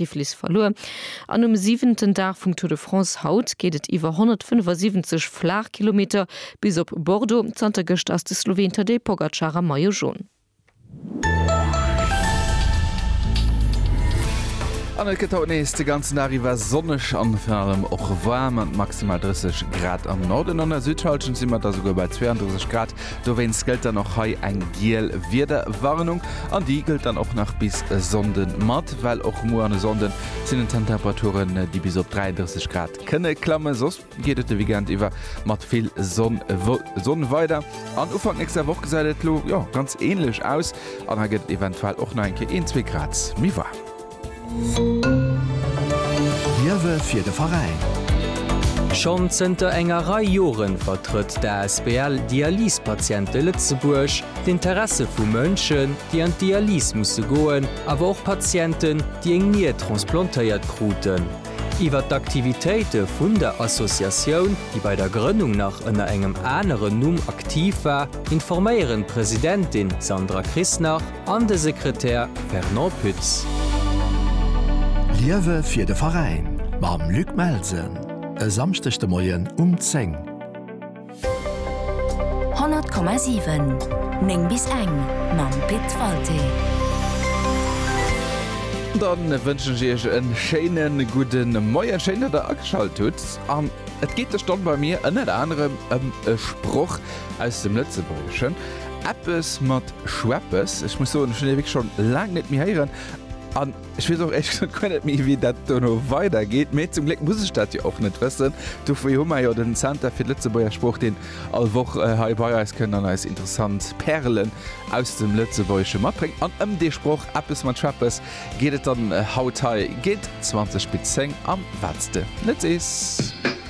Ifliss verluer an um siwenten Dag vum Tour de France haut geet et iwwer 175 Flaachkilometer bis op Bordeaux. Zanter gëschter ass de Sloween Tadej Pogacar am Maillot Jaune. An et gëtt haut nees de ganzen Dag iwwer sonneg an virun allem och waarm, mat maximal 30 Grad am Norden. An der Südhallschent si mer da souguer bei 32 Grad. Dowéinst gëllt dann och hei eng giel Wiederwarnung an déi gëllt dann och nach bis e Sonnde mat, well och muer an e Sonnde sinn et dann Temperaturen, déi bis op 33 Grad kënne klammen. Soss geet et de Weekend iwwer mat vill Sonn weider an Ufank nächster Woch gesäit et elo jo ganz ähnlech aus an da gëtt et eventuell och nach eng Kéier een, zwee Grad méi waarm. Liewe fir de Veräin! Schonn zënter enger Rei Jore vertrëtt d'ASBL Dialysepatiente Lëtzebuerg, d'Interesse vu Mënschen, déi an d'Dialyse musse goen, awer och Patienten, déi eng Nier transplantéiert kruten. Iwwer d'Aktivitéite vun der Associatioun, déi bei der Grënnung nach ënner engem aneren Numm aktiv war, informéieren d'Presidentin Sandra Krisnach, An de Sekretär Fernand Pütz. Liewe fir de Veräin mam Luc Melsen e Samschdeg de Moien um 10. 100,7, 9 bis eng mam Pit Walté. Dann wënschen ech iech en schéinen gudden Moien. Schéin dat der ageschalt hutt. An et geet des Stonn bei mir ënnert anerem ëm e Sproch aus dem Lëtzebuergeschen, eppes mat Schweppes. Ech muss soen, ech hunn dee wierklech schonn laang net méi héieren an ech weess och éierlech gesot guer net méi, wéi dat dono weidergeet. Mee zum Gléck muss ech dat jo och net wëssen. Dofir hu mer jo den Zenter fir d'Lëtzebuerger Sprooch, deen all Woch hei bei eis kënnt an eis interessant Pärelen aus dem Lëtzebuergesche matbréngt. An ëm dee Sproch Eppes mat Schweppes geet et dann haut hei. Geet 20 bis 10 am Wat s de net sees.